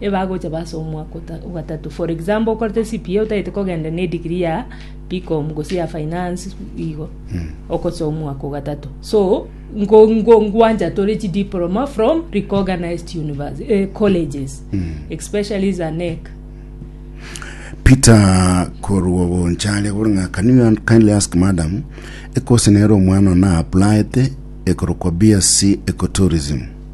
ebagocha bo ase omwaka o gatato. For example, okorete CPA otagete kogenda ne degree ya BCom gose ya finance igo. Okosa omwaka o gatato. So, ngo ngo ngwancha tore chi diploma from recognized university eh, colleges. Especially za NEC. Peter korwa bonchari agora ng'a can you kindly ask madam ekose nere omwana ona applied ekorokwa BSc ecotourism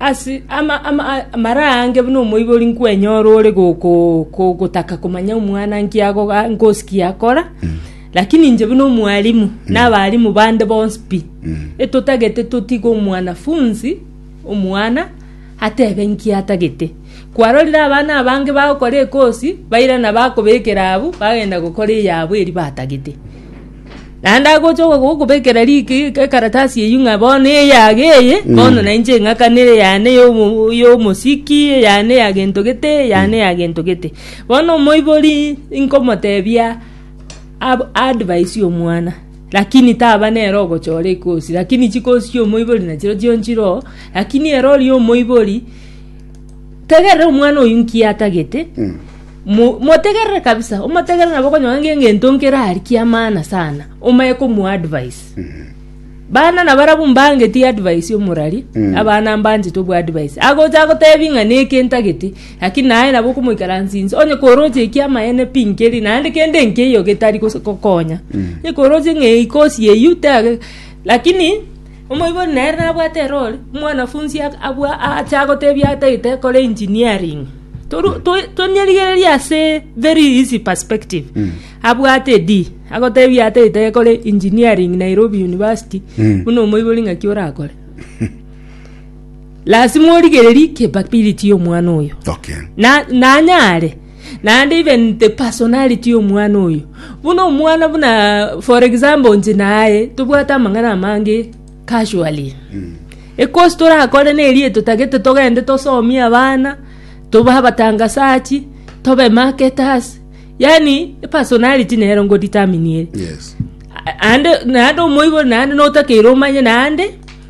Ase amara aange buna omoibori nkwenyora ore gotaka komanya omwana nki ngosikia akora, lakini inche buna omwalimu na abarimu bande bonsi pi, etotagete totige omwanafunzi omwana atebe nki atagete. Kwarorire abana abange bagokora ekosi, bairana bakobekera abwo, bagenda gokora eyabo eria batagete. Naende agocha ogo- gokobekera riki- ekaratasi eywo ng'a bono eyago eye, bono na inche ng'akanere yane ya omo- ya omosiki, eyane ya gento gete, eyane ya gento gete. Bono omoibori nkomotebia ab- advice ya omwana, lakini taba nere ogochora ekosi, lakini chikosi chia omoibori nachireo chio nchiroo, lakini ere oria omoibori, tegerera omwana oyio nki atagete. Mo- motegerere kabisa omotegerere nabo okonyora nge- ngento nkere ari kiamana sana omanye komuadvise bana nabarabu mbangeti advice omorari Mm. abana mbanchete obwa advice agocha agotebi ng'a neke ntageti lakini naye nabo okomoikaransinsa onye koroche ekiamaene pi nkeri naende kende nkeiyo getari gose kokonya Mm. ekoroche ng'a eyi kosi eywo tege lakini Omoibori nere nabwate erori, omwanafunsi abua aache agotebia ataete kore engineering. Tonyerigererie ase very easy perspective. Abwate D, agotebia ataete kore engineering Nairobi University, buna omoibori ng'aki orakore. Lasima origererie capability y'omwana oyo. Okay. Na, nanyare. Naende even the personality y'omwana oyo. Buna omwana buna for example nche naye tobwate amang'ana amange casually. Ekosi torakore nerie totagete togende tosomie abana, tobe abatangasachi, tobe marketers. Yaani personality nero ngo determine ere. Yes. A- ande naende omoibori naende notakeire omanye naende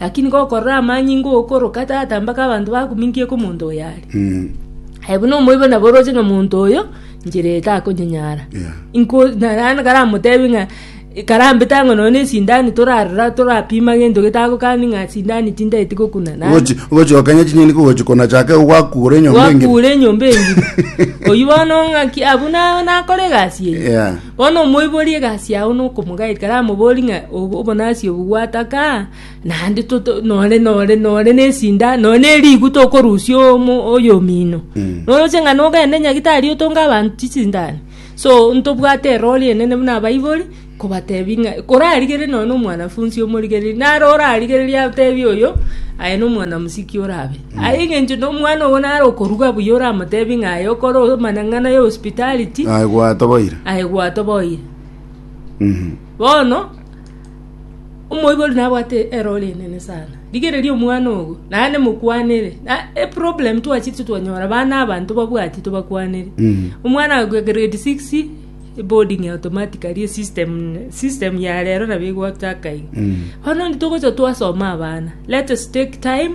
Lakini gokorora amanyinga okoroka tata mpaka abanto bakuminkie komonto oyo are. Mm. Aye buna omoibo nabo oroche ng'a monto oyo njira eye takonyenyara Yeah. inko narana karamotebi ng'a karambete ang'o nonya na esindani torarora torapima gento getagokani ng'a sindani tindaeti gokuna nani Ogochi- ogochi okenya chinyeni kogochi kona chake gwakure enyomba engima. gwakure enyomba engima oyu bono ng'aki abuna nakore egasi eye Yeah. Bono omoiborie egasi yao na okomogairi karamoborie ng'a obonasi obo gwataka, naende nore nore nore nesinda, nore nerigu tokorusia oyomino. Noroche ng'a nogende nyagetari otonge abanto chisindani. So ntobwate erori enene buna abaibori, kobatebi ng'a korarigerie nonye na omwanafunsi omorigereria, naro orarigereria atebi oyo, aye nomwana mosike orabe. Aye engencho nomwana obo nare okoruga buya oramotebi ng'a aye okore amanang'ana ya hospitality, Aye gwatoboire. aye gwatoboire. Mhm. Bono omoibori nabwate erori enene sana rigereria omwana ogo naende mokwanere na eproblem twachirete twanyora bana abanto babwati tobakwanere Mhm. omwana agoika grade six boarding automatically esystem system ya rero nabo egotaka iga Mhm. bono ntogocha twasoma abana let us take time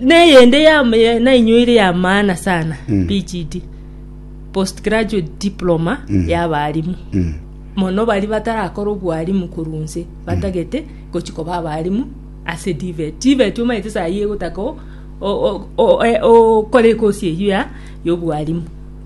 Neyende yam- ya- nainyoire yamaana sana PGD postgraduate diploma y'abarimu mono bari batarakora obwarimu korwa nse batagete gochi koba abarimu ase tivet tivet omanyete saa hii egotaka o- o- o- e- okore ekosi eyio ya y'obwarimu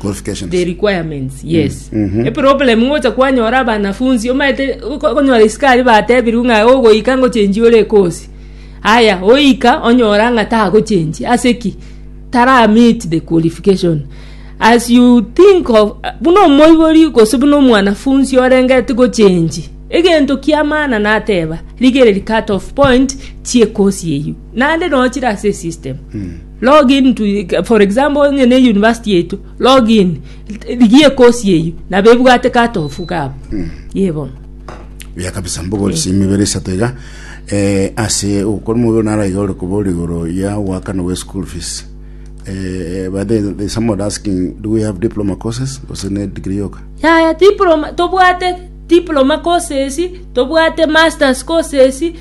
Qualifications. the requirements yes Mhm. eproblem ngocha kwanyora abanafunzi omaete ko- konyora isikari batebirwe ng'a ogoika ngochenji ore ekosi aya oika onyora ng'a tagochenji ase ki tara meet the qualification as you think of buna omoibori gose buna omwanafunzi orengeti gochenji egento kia maana nateba rigereria cut off point chiekosi eyio naende nochire ase esystem Log in to for example onye ne university yaito log in rigia ekosi eyio nabo ebwate cut off gabo ye bono buya kabisa mbogori simibere isato iga eh, ase ogokora omobere nara iga ore koba ore igoro ya oakana bwa school fees eh, but then there's someone asking do we have diploma courses gose ne degree yoka yaya diploma tobwate diploma courses tobwate masters courses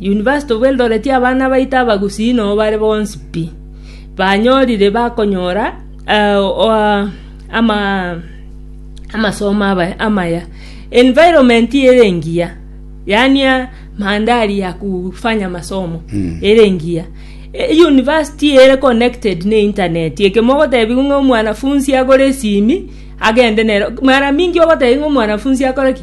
University of Eldoret abana baito abagusii no bare bonsi pi, banyorire bakonyora amasomo amaya. Environment ere engiya yaani mandhari ya kufanya masomo ere engiya. University ere connected ne internet eke mogotebiwa ng'a omwanafunzi agore esimi agende nere mara mingi ogotebiwa ng'a omwanafunzi akore ki?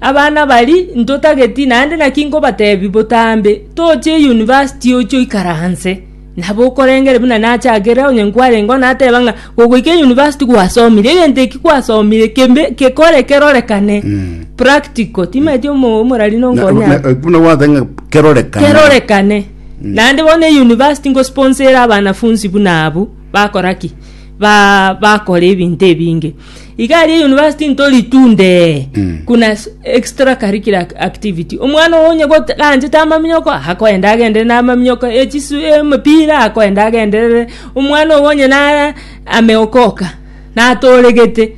Abana bari ntotageti naende naki nkobatebi botambe toche university oche oikaranse nabo okorengere buna nachakere onye nkwarengeo nateba ng'a gogoika university gwasomire egento eki gwasomire kembe kekore kerorekane Mm. practical timaeti omo- omorari Na- nonkonya na- eh, buna gwathenga kerorekana kerorekane naende bono euniversity ngosponsere abanafunsi buna abwo bakora ki ba- bakora ebinto ebinge iga aria university ntori tunde Mm. kuna s- extra curricular ac- activity omwana oyo onye gote- ganchete amaminyoko akoenda agenderere na amaminyoko echisu emepira akoenda agenderere omwana oyo onye na ameokoka natoregete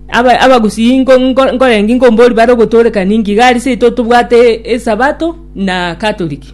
aba- abagusii nko- nko- nkorengi nkombori bare ogotorekani nki iga aria seito tobwate esabato na catholic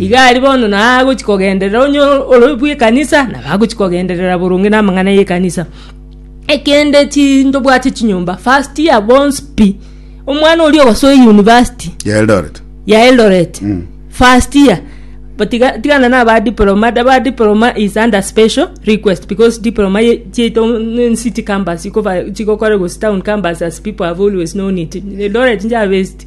Iga aria bono nagochi kogenderera onye ore bw'ekanisa, nabo agochi kogenderera boronge namang'ana y'ekanisa. Ekende chi ndobwate chinyomba, first year bonsi pi. Omwana oria ogosoe university ya Eldoret ya Eldoret Mm. first year but tiga- tigana na ba diploma da ba diploma is under special request because diploma ye- chiaito mm, city campus chikofa- chigokora gose town campus as people have always known it Eldoret nja based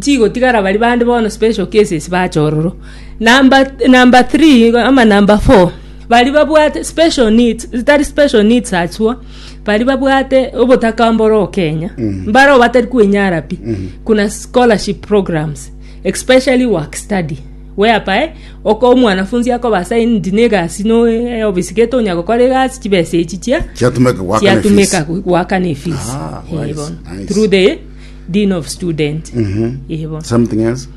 chigotigara baria bande bono special cases bacha ororo. Number th- number three igo ama number four baria babwate special needs tari special needs achwo baria babwate obotaka mbore okenya mbare abo batari kwenyara pi kuna scholarship programs especially work study whereby oko omwanafunzi akoba assigned na egasi no eofisi gete onya gokora egasi chibesa echi chia Chiatumeka goakana chiatumeka efisi. goakana efisi Ah, Eh, wise, bono. nice. through the Dean of Student. Ehe. Ibo. Something else?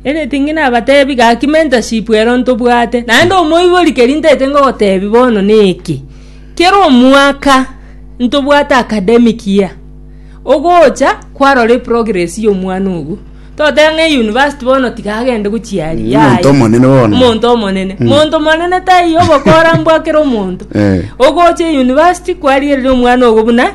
Anything nabatebi gaki mentorship ero ntobwate. Naende omoibori keri ntaete ngogotebi bono neki. Kera omwaka ntobwate academic year. Ogocha kwarora eprogress ya omwana ogo. Toteba ng'a euniversity bono tiga agende gochia aria. Yaya. Omonto omonene bono. Omonto omonene. Monto omonene taiyo obokora mbwakera omonto. Eh. Ogocha euniversity kwarierire omwana ogo buna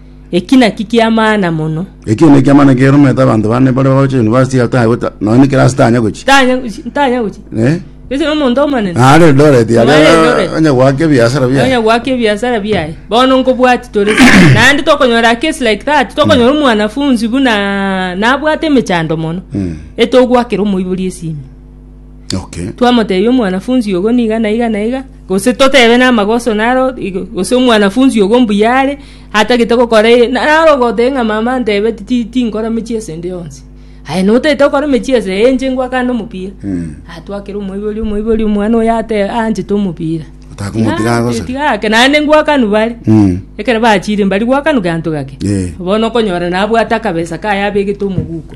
Eki nakio ki'amaana mono. Eki nekiamana kiarumete abanto bane baria bagocha university ataya gota nonya ne class tanya gochi Ntanya gochi- ntanya gochi. eh Gose nomonto omonene. na are Eldoret Are yaria Eldoret. onye gwake biasara Nonya bia gwaka ebiasara biaye bono nkobwati tore naende tokonyora a case like that tokonyora omwanafunzi buna nabwate emechando mono Mm. etogwakera omoibori esimi okay twamotebia omwanafunzi ogo niga na iga na iga Gose totebe namagoso naro, gose omwanafunsi ogo mbuya are, atagete gokora eye, naro ogoteba ng'a mama antebeti ti- tinkora emechie ase ende yonsi. Aye notagete gokora emechie ase eye, inche ngwa kando omopira. Atwakera omoibori, omoibori omwana oyo ateba anchete omopira. Otaka omopira Aa, agosore. tiga ake, naende ngwakanu bare. Mm. Ekero bachire mbari gwakanu gento gake. Eh. Bono okonyora nabwate akabesa kaye abegete omoguko.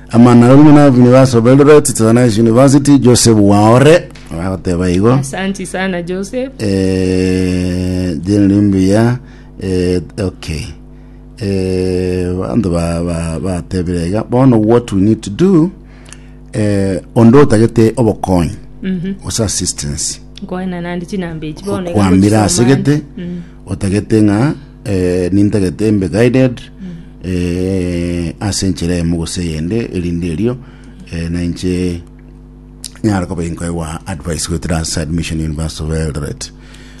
Amang'ana aria buna nabinire ase Eldoret Technics University, Joseph Waore agoteba igo. Asanti sana Joseph. Eh, jina ni mbuya eh, okay eh, bantu ba- ba- batebire iga bono what we need to do eh, onde otagete obokonyi gose assistance Nkoena nandi chinamba echi bono iga kwambira gochisa ase omwana. gete otagete ng'a eh, nintagete mbe guided eh, ase enchera eyemo gose eyende erinde erio eh, nainche nyare koba inkoegwa advice goetera ase admission university of eldoret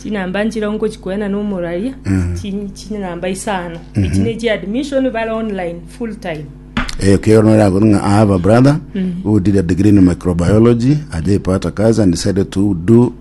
chinamba nchira nkochikwena nomoraria chi- chinamba isano echi ne chi admission bare online full time eyo kero norakoru ng'a i have a brother who did a degree in microbiology ajaipata kazi and decided to do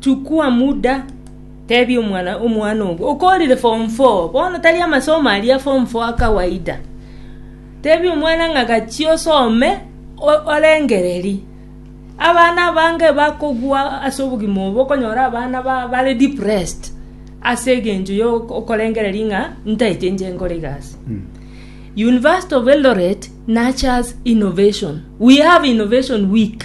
Chukua muda tebia omwana omwana ogo okorire form four bono tari amasomo aria form four akawaida tebia omwana ng'a gachia osome o- orengereri abana abange bakogwa ase obogima obo okonyora abana ba- bare depressed ase egencho ya oko- okorengereri ng'a ntaete inche nkore egasi university of eldoret nurtures innovation we have innovation week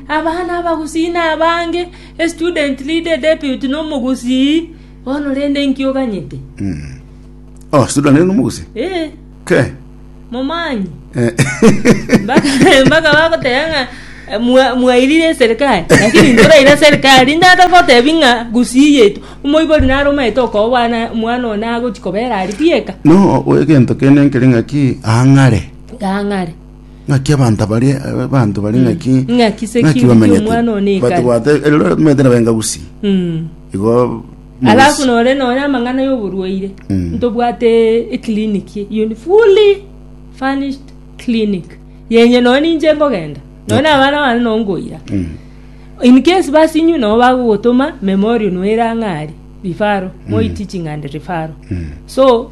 Abana abagusii nabange, a student lead, a deputy, na omogusii. Bono rende inki oganyete? Oh, student lead nomogusii. Eh, Ke. momanyi. Eh. Mpaka mpaka bagoteba ng'a eh, mwa- mwairire eserikali lakini ntoraira serikali ndata gotebi ng'a gusii yetu omoibori nare omaete okobwana mwana one agochi kobera ari bieka No, egento kende nkere ng'aki ang'are. gang'are ng'aki abanta baria abanto baria ng'aki Mm. Ng'aki se ng'aki kiu bamenyete ki'omwana one ekare. batobwate elero bamenyete na benga gusi Mm. igo alafu mogosi- nore nonye amang'ana y'oborwaire Mm. ntobwate eclinic iyo ni fully furnished clinic yenye nonye ninche nkogenda nonye na abana bane nonye nkoira Mm. in case basinywe nabo bagogotoma memorial noera ng'ari rifaro moitiching and rifaro Mm. so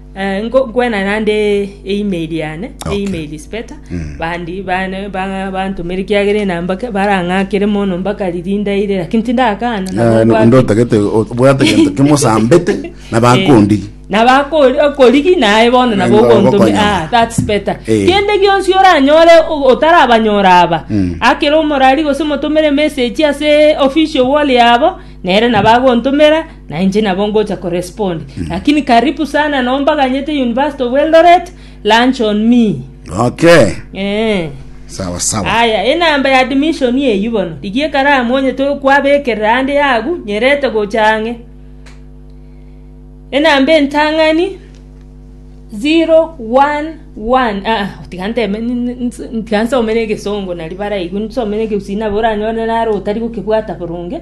Eh, nko- nkwena naende eimeri yane Okay. eimeri speta Mm. bandi bane ba- bantumire kiagera enamba ke- barang'akere mono mpaka riri ndaire lakini tindakana Eh, nabo no- nkwaki- ndotagete obwate gento kimosambete na bakondi Eh, na bakori okorigi naye bono nabo Nabo ogontumi ogokonya. ah that's better Eh. kende gionsi oranyore o- otarabanyora aba Mm. akere omorari gose motumire message ase official wall yabo nere nabagontumira na inche nabo ngocha korespond lakini karibu sana no mbaganyete university of eldoret lunch on me okay eh sawa sawa aya enamba ya admission eyu bono rigia ekaramu onye to kwabekerera ande yagu nyerete gocha ang'e enamba entang'ani 011 ah, tiga nteme ni- ni- ni- tiga nsome na egesongo nari baraigu nsome na egeusii nabo oranyore naro otari gokebwata boronge